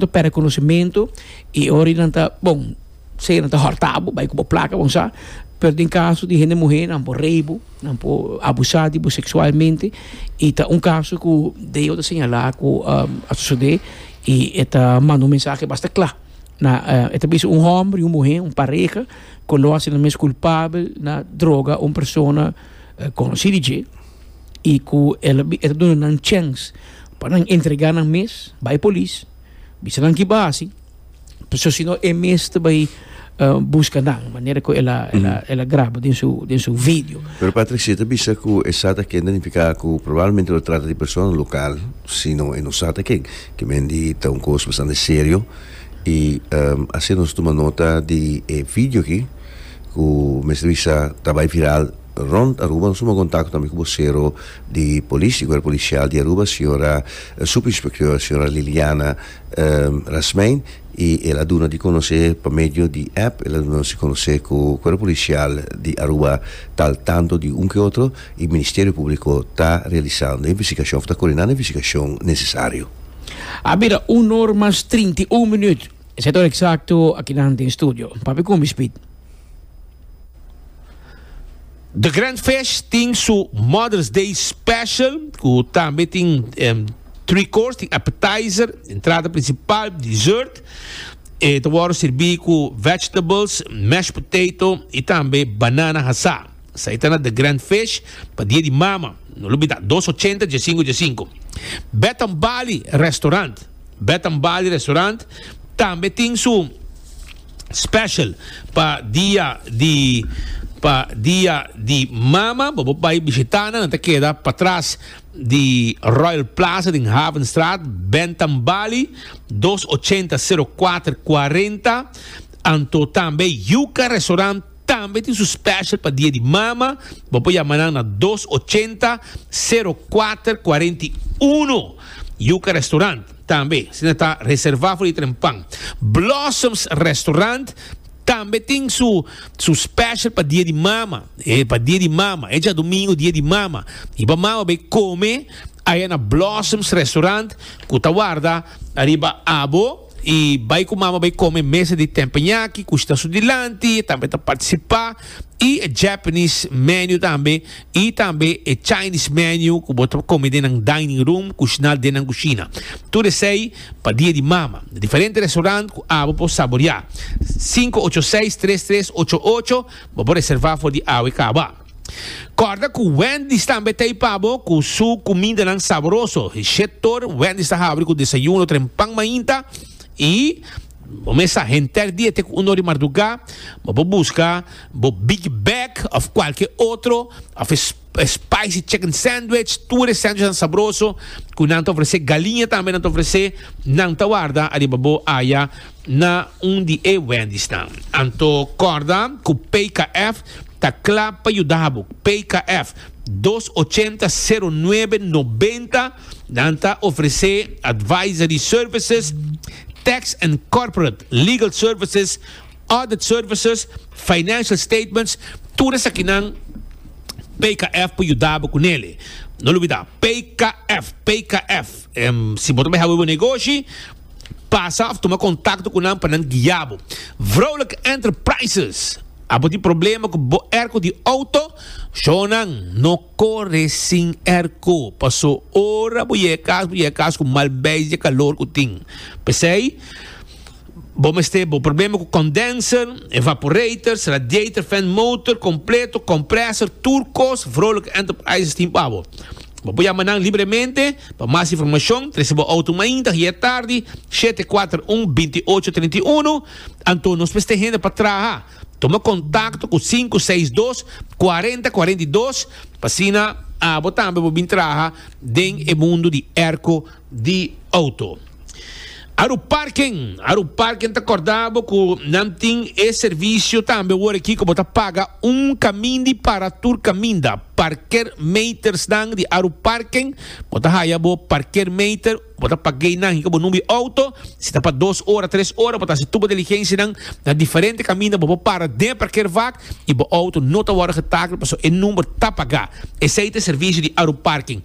Lo perde conocimento y ora y nan ta bon sea nan ta horta bo bay cu bo placa bo sa pero den caso di hende muher nan por rey bo nan por abusa di bo sexualmente y ta un caso cu deo ta señala cu a sucede y e ta manda un mensahe basta cla na e ta bisa un homber y un muher un pareha cu lo haci nan mes culpabel na droga un persona. Conoci di dje y cu el a bin duna nan chens pa nan entrega nan mes, bay polis, bisa nan ki basi, pasobra si no e mes ta bay busca nan, manera cu el a graba den su den su video. Pero Patrick si e ta bisa cu e sa ta kenda nifica cu probablemente lo trata di persona local, sino e no sa ta ken, ki mendi ta un cos bastante serio y asina nos tuma nota di e video aki. ku mester bisa ta bai viral rònt Aruba nos tuma kontakto tambe ku bosero di polisi, di kuerp polisial di Aruba señora superinspekteur señora Liliana Rasmein i el a duna di konosé pa medio di app el a duna nos di konosé ku kuerp polisial di Aruba ta al tanto di un ke otro i Ministerio Públiko ta realisando e investigashon òf ta koordinando e investigashon nesesario. A bira uno ora mas trinta i un minüt. Esei ta ora exacto akinan den studio. Papia cu mi speed. The Grand Fish tin su Mother's Day Special cu tambe tin three course, tin appetizer, entrada principal, dessert. E ta worde sirbi cu vegetables, mashed potato y tambe banana hasa. Esei ta na The Grand Fish pa dia di mama. No lo bida, dos ochenta dje sinku dje sinku. Bed and Bali Restaurant. Bed and Bali Restaurant tambe tin su special pa dia di pa dia di mama bo por bai bishita nan nan ta keda patras di Royal Plaza den Havenstraat Bed and Bali dos ochenta sero kuater kuarenta anto tambe Yuka Restaurant Tambe tin su special pa dia di mama, bo por yama nan na dos ochenta, sero kuater kuarenta i uno. Yuca Restaurant tambe asina ta reserva for di tren pan. Blossoms Restaurant tambe tin su su special pa dia di mama, e pa dia di mama e djadomingo dia di mama i bo mama bai come aya na Blossoms Restaurant cu ta warda ariba abo. I bai ku mama bai kome mesa di tempenyaki ku sta su dilanti, e tambe ta partisipá. I e Japanese menu tambe, i tambe e Chinese menu ku bo ta kome den nan dining room ku snal den nan kushina. Tur esei pa dia di mama. Diferente restaurant ku abo por saboriá. Sinku ocho seis tres tres ocho ocho, bo por reservá for di awe kaba. Corda cu Wendy's tambe ta hipa bo cu su cumindanan saboroso. Heshet Tor, Wendy's ta habri cu desayuno tren pan mainta y bo mesa henter di e te cu un or di marduga ma bo busca bo Big Bag of cualke otro of e spicy chicken sandwich. Tur e sandwichnan saboroso cu nan ta ofrece. Galiña tambe nan ta ofrece. Nan ta warda ariba bo aya. na un di e wendisnan. Anto kòrda ku PKF ta kla pa yuda bo. PKF dos ochenta sero nuebe nobenta Nan ta ofresé advisory services, tax and corporate, legal services, audit services, financial statements, tur esakinan PKF por yuda bo ku nele. No lo bida, PKF, PKF, em, si bo ta mehá bo e bo negoshi, Pasa of tuma kontakto ku nan pa nan guia bo. Vrolijk Enterprises, Abo tin problema ku bo erko di outo? Shonan no kore sin erko, paso ora bo yega kas bo yega kas ku mal beis di e kalor ku tin. P'esei bo mester bo problema ku kondenser, evaporators, radiator, fan motor kompleto, kompreser, tur kos Vrolijk Enterprises tin pa bo. Bo por yama nan libremente. Pa mas informacion, trese bo auto mainta hierr tardi, shete kuater un binti ocho trinta i unu. Anto nos mester hende pa traha. Tuma contacto cu sinku seis dos, kuarenta kuarenta i dos, pa asina abo tambe bo bin traha den e mundo di Erko. di auto. Aru parken, Aru parken ta korda bo ku nan tin e servisio tambe wor aki ku bo ta paga un kamin di para tur kaminda. Parkeermetersnan di Aru parken bo ta haya bo parkeermeter, bo ta pag'ei nan hiko bo number auto, si ta pa dos ora tres ora bo ta hasi tur bo diligensianan na diferente kaminda bo por para den parkeervak i bo auto no ta wòrdu getakel pasobra e number ta pagá. Esei ta e servisio di Aru parken.